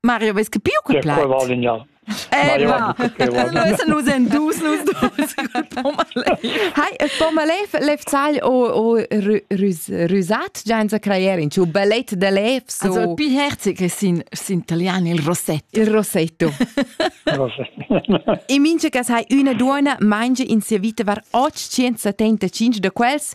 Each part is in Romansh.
Mario, vez che più che plac? Eh, va. Nus en dus, nus dus. Hai, e po ma lev, lev zahl o, o rusat, gianza crayer in ciu ballet de lev. So... Also, più herzig è in, in italiano il rossetto. Il rossetto. e mince che sai una duona mangia in sia vita var 875 de quels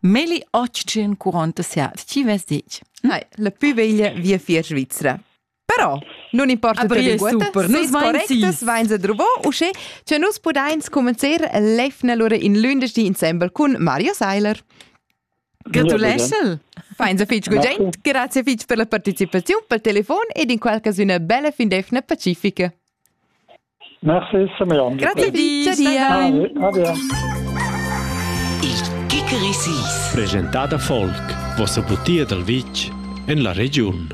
Meli oggi curont sia stivas dic. Nei, la più veglia via fier Svizzera. Però non importa Aber per linguetta, super, nus correctes vains a druvo, usche che nus pudains comencer l'efna lura in lündeschdi insemble cun Mario Seiler. Gratuleschel! Feins a fitg gugent, grazie fitg per la partecipaziun, pel telefon ed in qualche una bella fin d'efna pacifica. Merci, Simeon. Grazie di. Ade. Il Kikerisis. Presentada folk. Vossa butia dal vitg en la regiun.